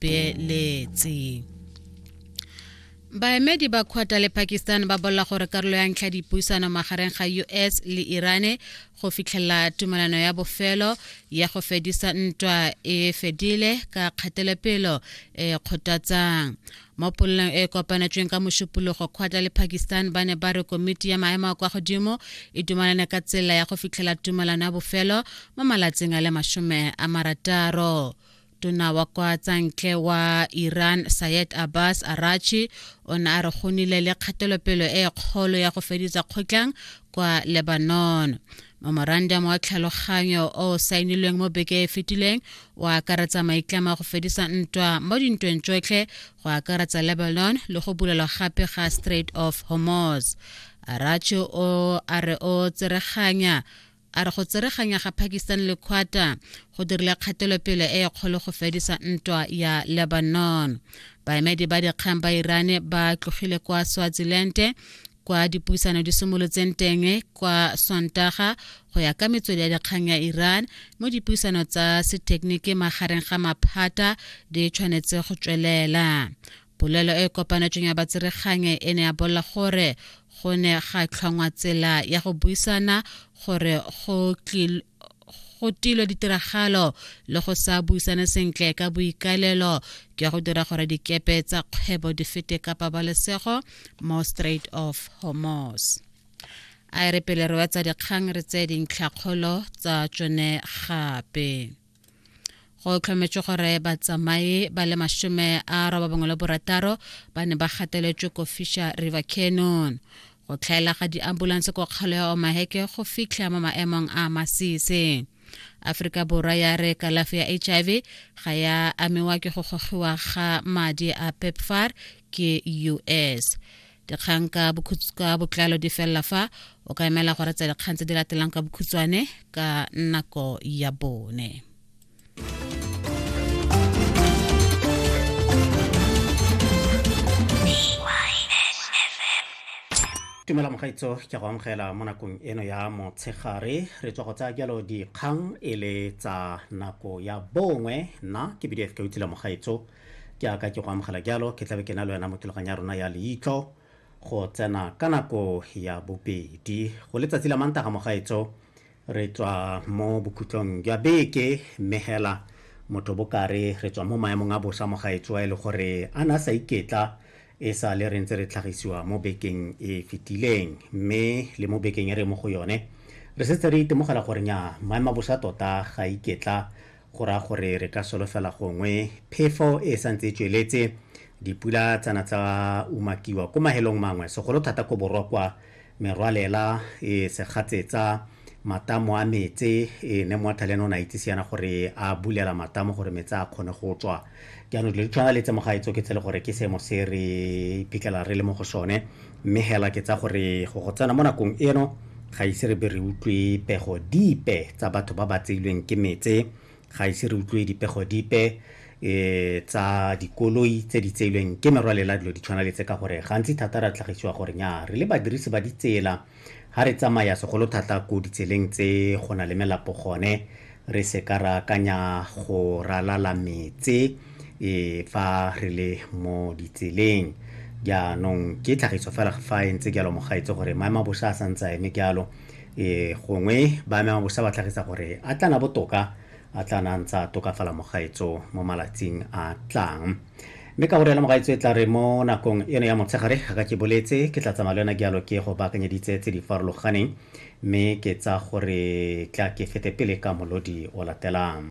beeletse baemedi ba kgwata le pakistan ba bolela gore karolo ya ntlha dipuisano magareng ga us le irane go fitlhelela tumelano ya bofelo ya go fedisa ntwa e fedile ka kgatelopelo e kgothatsang mo polelong e kopanetsweng ka mošupologo kgwatla le pakistan ba ne ba re komiti ya maemo a kwa godimo e dumalane ka tsela ya go fitlhela tumalano ya bofelo mo malatsing a le masome a marataro tona wa kwa tsantle wa iran sayed abbas arachi o ne a re go nile le kgatelopelo e kgolo ya go feditsa kgotlang kwa lebanon memorandum wa tlhaloganyo o saenilweng mo beke e fetileng o akaretsa maitlamo a go fedisa ntwa mo dintweng tsotlhe go akaretsa lebanon le go bulelwa gape ga strait of hormuz arachi o a re o tsereganya A re go tsereganya ga Pakistan le Qatar go dirile kgatelopele e e kgolo go fedisa ntwa ya Lebanon. Baemedi ba dikgang ba Irane ba tlogile kwa Swaziland kwa dipuisano di simolotseng teng kwa sontaga go ya ka metswedi ya dikgang ya iran mo dipuisano tsa sethekeniki magareng ga maphata di tshwanetse go tswelela polelo e e kopanetsweng ya batseregange e ne ya bolela gore go ne ga tlhongwa tsela ya go buisana gore go go tilwe ditiragalo le go sa buisane sentle ka boikalelo ke go dira gore dikepe tsa kgwebo di fete ka pabalesego mo straight of hormos a e re pele re wetsa dikgang re tse dintlhakgolo tsa tsone gape go tlhometswe gore batsamaye ba le masome a robabongwe le borataro ba ne ba gateletswe ko fisher river canon go tlhaela ga diambulance ko kgalo ya omaheke go fitlha mo maemong a masise aforika borwa ya re kalafi ya hiv ga ya amiwa ke go gogiwa ga madi a pepfar ke us dikgang ka botlalo di felela fa o ka emela gore tsa dikgang tse di latelang ka bokhutshwane ka nako ya bone tumela mogaitso ke go amogela mo nakong eno ya motshegare re tswa go tsaya jalo dikgang e le tsa nako ya bongwe nna ke bdf ka utsile mogaitso ke aka ke go amogela jalo ke tlabe ke na le wena mo thulaganyo ya rona ya leitlho go tsena ka nako ya bobedi go letsatsi la mantaga mogaetso re tswa mo bokhutlong jwa beke mme hela motho bokare re tswa mo maemong a bosa mogaetso a e le gore a na sa iketla e sa le re ntse re tlhagisiwa mo bekeng e fetileng mme le mo bekeng e re mo go yone re setse re itemogela gore nya maemo a bosa tota ga iketla go raya gore re ka solofela gongwe phefo e sa ntse e tsweletse dipula tsana tsa umakiwa ko mahelong mangwe segolo thata ko borwa kwa merwalela e segatsetsa matamo a metse e ne moathale ne o ne a itsise yana gore a bulela matamo gore metse a kgone go tswa jaanong dilo di tshwana le tse mogaetso ke tse le gore ke seemo se re iphitlhela re le mo go sone mme hela ke tsa gore go go tsena mo nakong eno ga ise re be re utlwe pego dipe tsa batho ba ba tseilweng ke metse ga ise re utlwe dipego dipe um tsa dikoloi tse di tseilweng ke merwalela dilo di tshwana le tse ka gore gantsi thata ra tlhagisiwa gore nya re le badirisi ba ditsela Ga re tsamaya segolo thata ko ditseleng tse go na le melapo gone, re se ka ra akanya go ralala metse e fa re le mo ditseleng. Jaanong ke tlhagiso fela fa e ntse jalo mogaetse gore maemabosha a santse a eme jalo e gongwe ba maemabosha ba tlhagisa gore a tlana botoka a tlana ntse a tokafala mogaetso mo malatsing a tlang. mme ka gore lemoga e tla re mo nakong eno ya motshegare ga ke boletse ke tla tsamaya le yona jalo ke go baakanyeditse tse di farologaneng mme ke tsa gore tla ke fete pele ka molodi o latelang